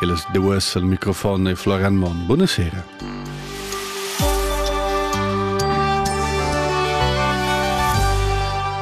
Ellas duas al microfon e Florian Monn. Buona sera.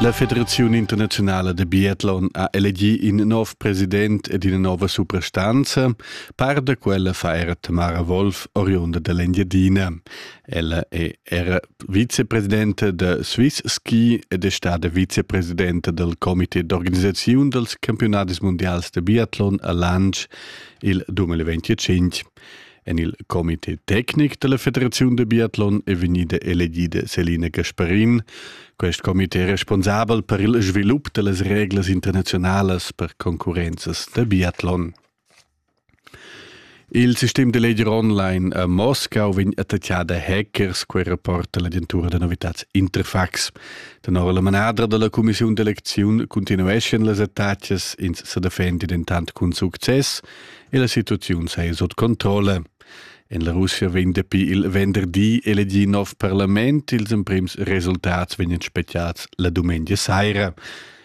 La Federazione Internazionale de Biathlon ha elegì in nov president ed ina nova suprastanza. Par da quella fa era Tamara Wolf, oriunda dell'Engiadina. Ella è era vicepresidente da Swiss Ski ed è stada vicepresidente del comité d'organisaziun dels campionadis mundials de biathlon a Lanz il 2025. En il comité tecnic della Federazione de Biathlon è vegnida elegida Selina Gasparin. Quest comité è responsabel per il svilup dellas reglas internazionalas per concurrenzas de biathlon. Il sistem da leger online a Moscau vegn attachà da hackers, quei rapporta l'agentura da novitats Interfax. Tenor la manadra dalla cumissiun d'elecziun continueschan las attacas, ins sa defendi dentant cun success e la situaziun sei sut controlla. En la Russia vegn dapi il venderdi elegì nov parlament, ils emprims resultats vegnan spegliads la dumengia saira.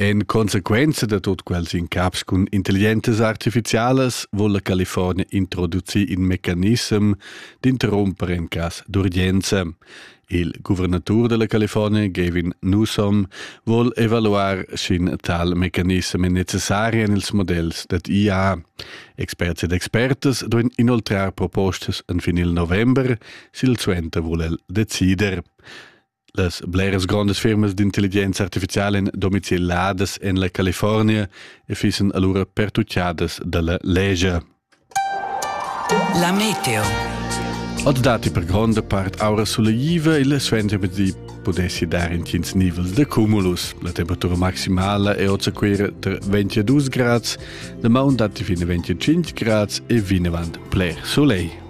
En consequenza da tut quels incaps cun intelligentas artificialas vul la California introducir in mecanissem d'interrumper en cas d'urgenza. Il guvernatur della California, Gavin Newsom, vol evaluar sch'in tal mecanissem è necessari en ils modells dad IA. Experts ed expertas duin inoltrar propostas en fin il november, sil suenter vul el decider. Las bleras grondas firmas d'intelligenza artificiala en domicil ladas en la California e fissen allura pertucciadas dalla legia. La meteo. Od dati per gronda part aura suleiva e suenter di pudessi dar in tins nivels de cumulus. La temperatura maximala è ozaquera tra 22 grads, la maun dati fine 25 grads e vinavant bler soleil.